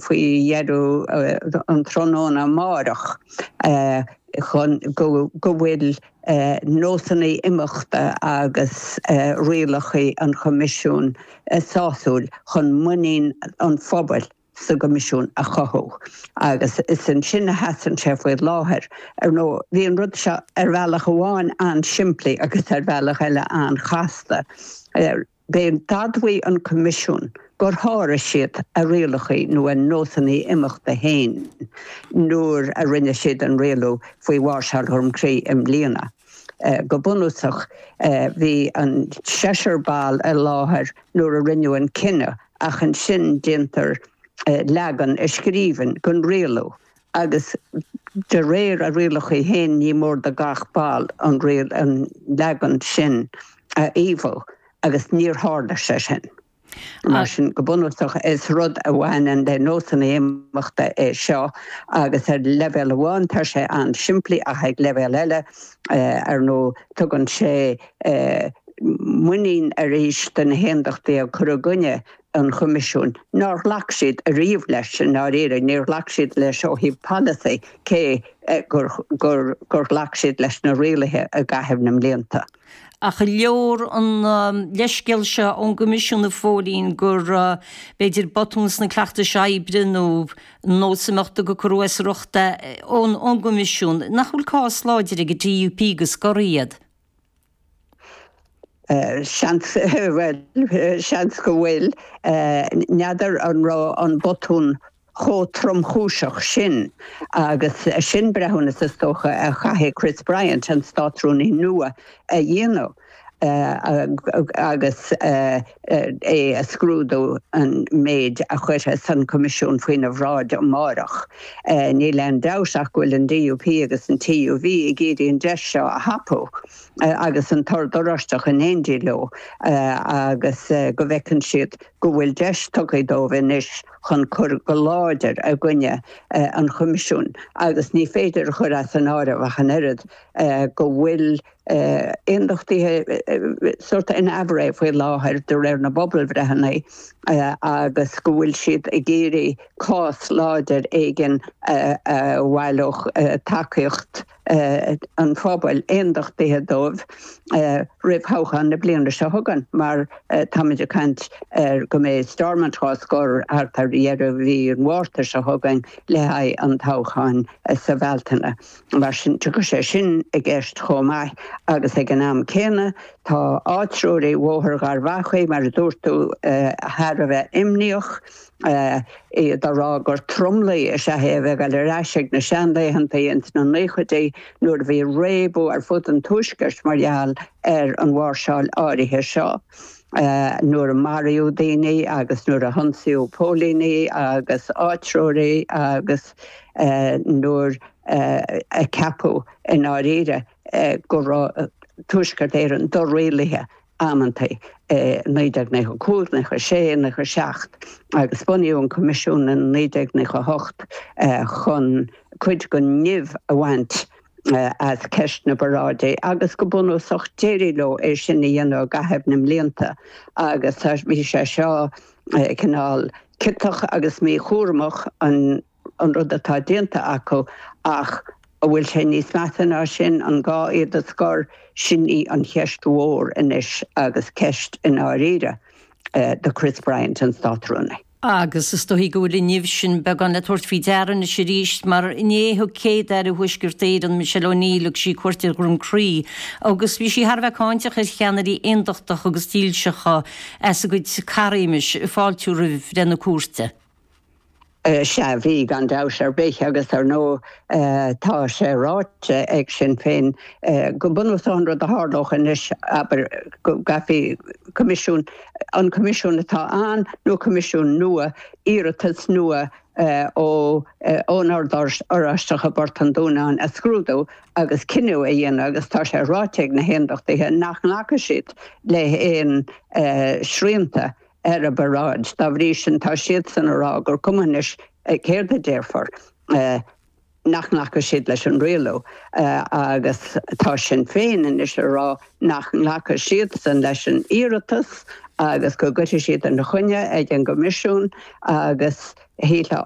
faoi dheireadh an tráthnóna amáireach chun go bhfuil nósanna imeachta agus rialacha an Choimisiúin sásúil chun muinín an phobail sa gCoimisiún a chothú. Agus is ansin a sheasann sé faoi láthair. Ar ndóigh, bhí an rud seo ar bhealach amháin an-simplí agus ar bhealach eile an-chasta. D'admhaigh an Coimisiún gur sháraigh siad a rialacha nó a nósanna imeachta féin nuair a rinne siad an rialú faoi mháirseáil Dhroim Crí i mbliana. Go bunúsach, bhí an seisear ball i láthair nuair a rinneadh an cinneadh ach ansin déantar leagan i scríbhinn den rialú agus de réir a rialachaí fhéin ní mór do gach ball an leagan sin a fhaomhadh agus níor thárla sé sin. Mar sin, go bunúsach is rud a bhaineann le nósanna imeachta é seo agus ar leibhéal amháin tá sé an-simplí ach ag leibhéal eile, ar ndóigh, tugann sé muinín arís do na hAondachtaithe cur i gcoinne an Choimisiúin. Nár ghlac siad ariamh leis, i ndáiríre, níor ghlac siad leis ó thaobh polasaí cé gur ghlac siad leis na rialaithe i gcaitheamh na mblianta. Ach an leor an leithscéal seo ón gCoimisiún, a Phóilín, gur b'fhéidir botún sna cleachtais oibre nó nós imeachta gur cúrsa reatha ón gCoimisiún. Nach bhfuil cás láidir ag an DUP go scorfaí iad? Seans, seans go bhfuil. N'fheadar an raibh an botún chomh tromchúiseach sin agus sin breithiúnas, is dócha, a chaithfidh Chris Bryant, an Státrúnaí nua, a dhéanamh agus. é a scrúdú an méid a chuirfidh an Coimisiún faoina bhráid amárach. Níl aon dabht ach go bhfuil an DUP agus an TUV ag iarraidh an deis seo a thapú agus an tOrd Oráisteach in éindí leo agus go bhfeiceann siad go bhfuil deis tugtha dóibh anois chun cur go láidir i gcoinne an Choimisiúin agus ní féidir a chur as an áireamh ach an oiread go bhfuil Aondachtaithe sórt in aimhréidh faoi láthair de réir na bpobalbhreitheanna agus go bhfuil siad ag iarraidh cás láidir éigin a bhaileodh tacaíocht an phobail aondachtaithe dóibh roimh thoghchán na bliana seo chugainn mar táimid ag caint ar go mbeidh Stormont dhá scor thart ar dheireadh mhí an Mhárta seo chugainn le haghaidh an toghcháin sa Bhealtaine. Mar sin, tiocfaidh sé sin i gceist chomh maith agus ag an am céanna tá áitreoirí Bhóthar Gharbhachaidh, mar a dúirt tú, thar a bheith imníoch, iad a rá gur tromluí is ea é a bheith ag dul ar ais chuig na seanlaethanta ins na nóchaidí nuair a bhí réabadh ar fud an Tuaiscirt mar gheall ar an mháirseáil áirithe seo. nuair a maraíodh daoine agus nuair a hionsaíodh póilíní agus áitreoirí agus nuair a ceapadh i ndáiríre go raibh Tuaisceart Éireann do-rialaithe amantaí, i 1995, 1996, 1997 agus bunaíodh an Coimisiún i 1998 chun cuid den nimh a bhaint. as ceist na bparáidí agus go bunúsach d'éirigh leo é sin a dhéanamh i gcaitheamh na mblianta agus tá, bhí sé seo cineál ciotach agus míchúramach an rud atá déanta acu ach an bhfuil sé níos measa ná sin, an gá iad a scor? Sin í an cheist mhór anois agus ceist i ndáiríre do Chris Bryant, an Státrúnaí. Agus is dóichí go bhfuil an nimh sin beagán le tabhairt faoi deara anois arís, mar inné thug Céad-Aire Thuaisceart Éireann, Michelle O'Neill, thug sí cuairt ar Dhroim Crí, agus bhí sí thar a bheith cáinteach ar cheannairí aondachtacha agus dílseacha as a gcuid caithréime ag fáiltiú roimh bhreith na cúirte. Sea, bhí, gan dabht ar bith, agus ar ndóigh tá sé ráite ag Sinn Féin go bunúsach an rud a tharlódh anois, abair, go gcaithfí Coimisiún an Coimisiún atá ann nó Coimisiún nua, iarratas nua ón Ord Oráisteach i bPort an Dúnáin a scrúdú agus cinneadh a dhéanamh agus tá sé ráite ag na hAondachtaithe nach nglacfaidh siad le haon srianta ar a bparáid. Dá bhrí sin tá siadsan a rá gur cuma anois céard a déarfar. nach nglacfaidh siad leis an rialú agus tá Sinn Féin anois a rá nach nglacfaidh siadsan leis an iarratas agus go gcuirfidh siad ina choinne ag an gCoimisiún agus shílfeá